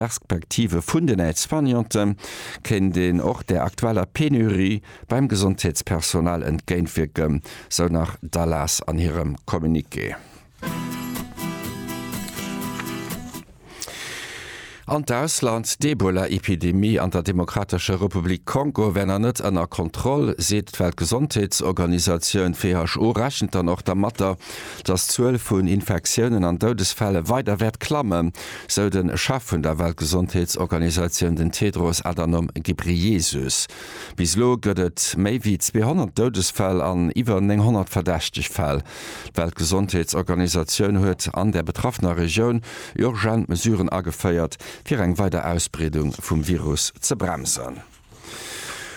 Perspektive vun den Aide-soignante kéint een och der aktueller Penurie beim Gesondheetspersonal entgéintwierken, sou nach d'ALAS an hirem Communiqué. An d'Ausland, D'Ebola-Epidemie an der Demokratescher Republik Kongo wär nach net ënner Kontroll, seet d'Weltgesondheetsorganisatioun. D'WHO rechent dann och dermatter, datt d'Zuel vun Infektiounen an Doudesfälle weider wäert klammen. sou de Chef vun der Weltgesondheetsorganisatioun, den Tedros Adhanom Ghebreyesus. Bis elo gëtt et méi wéi 200 Doudesfäll an iwwer 900 verdächteg Fäll. D'Weltgesondheetsorganisatioun huet an der betraffener Regioun urgent Mesuren ageféiert, fir eng weider Ausbreedung vum Virus ze bremsen.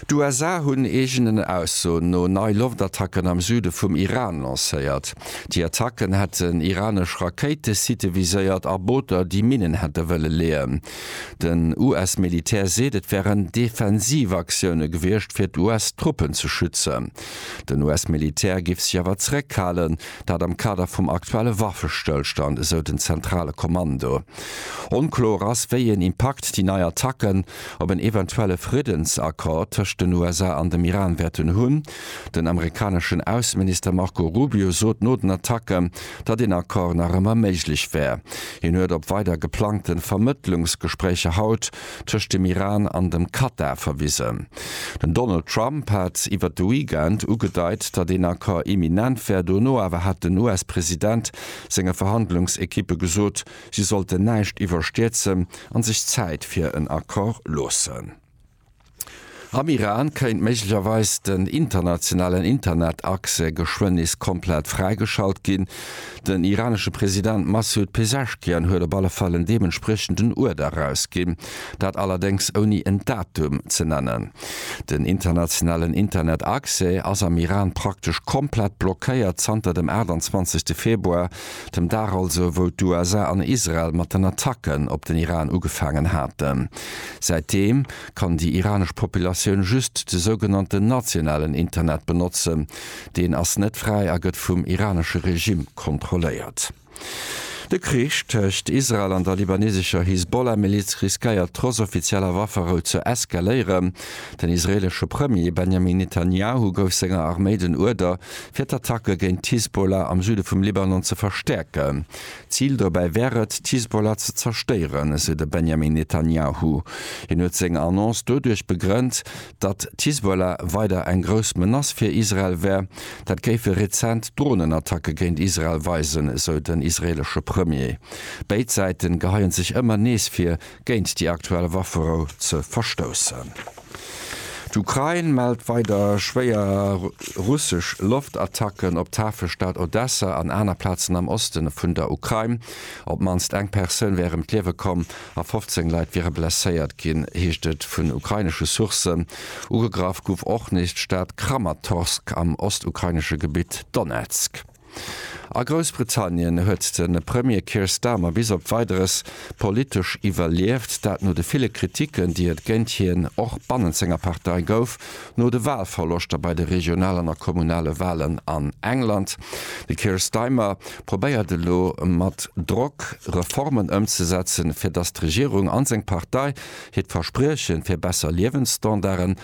D'USA hunn eegenen Aussoen no nei Loftattacken am Süde vum Iran lancéiert. Déi Attacken hätten iranesch Rakéitesitte viséiert a Booter, déi Minnen hätte wëlle leeën. Den US-Militär seet, et wären Defensivaktioune gewiescht, fir d'US-Truppen ze schützen. Den US-Militär géif sech awer zeréckhalen, dat am Kader vum aktuelle Waffestëllstand, esou den zentrale Kommando. Onkloer ass, wéi een Impakt déi nei Attacken op en eventuelle Friddensaccord tëscht den USA an dem Iran wäerten hunn. Den amerikaneschen Ausseminister Marco Rubio sot no den Attacken, datt een Accord nach ëmmer méiglech wär. Hien huet op weider geplangte Vermëttlungsgespréicher haut tëscht dem Iran an dem Katar verwisen. Den Donald Trump hat iwwert de Weekend ugedeit, datt een Accord imminent wär. Dono awer hat den US-President senge Verhandlungsekippe gesot, Si sollten näischt iwwerstierzen an sech Zäit fir en Accord loossen. Am Iran kéint méiglecherweis den internationalen Internetaccès geschwënn nees komplett fräigeschalt ginn. Den iranesche President Massoud Pezeshkian huet op alle Fall en deementspriechenden Uerder erausginn, dat allerdéngs ouni en Datum ze nennen. Den internationalen Internetaccès ass am Iran praktesch komplett blockéiert zanter dem 28 Februar. dem Dag also wou d'USA an Israel mat den Attacken op den Iran ugefaangen haten. Säitdeem kann déi iranesch Populatioun just de sougenannten nationalen Internet benotzen. Deen ass net fräi a gëtt vum iranesche Regime kontrolléiert. De Krich tëscht Israel an der libanesescher Hisbollah-Miliz riskéiert trotz offizieller Wafferou ze eskaléieren. Den israeelesche Premier Benjamin Netanjahu gouf senger Arméi den Uerder, fir d'Attacke géint d'Hisbollah am Süde vum Libanon ze verstäerken. D'Zil dobäi wär et, d'Hisbollah ze zerstéieren, esou de Benjamin Netanjahu. Hien huet seng Annonce doduerch begrënnt, datt d'Hisbollah weider eng grouss Menace fir Israel wär. Dat géife rezent Dronenattacke géint Israel weisen, esou den israeelesche Premier. Béid Säite geheie sech ëmmer nees fir géint déi aktuell Wafferou ze verstoussen. D'Ukrain mellt weider schwéier russesch Loftattacken op d'Hafestad Odessa an aner Plazen am Oste vun der Ukrain. Op d'mannst eng Persoun wär ëm d'Liewe komm a 15 Leit wiere blesséiert ginn, heescht et vun ukrainesche Sourcen. Ugegraff gouf och nees d'Stad Kramatorsk am ostukrainesche Gebitt Donezk. A Groussbritannien huet de Premier Keir Starmer bis op Weideres politesch iwwerlieft, dat no de ville Kritiken, déi et géint hien och bannent senger Partei gouf, no de Walverloschter bei de regionalen a kommunale Walen an England. De Keir Staimer probéiert elo mat Drock Reformen ëmzesetzen, fir datt d'Regierung an seng Partei hiert Versprieche fir besser Liewensstandarden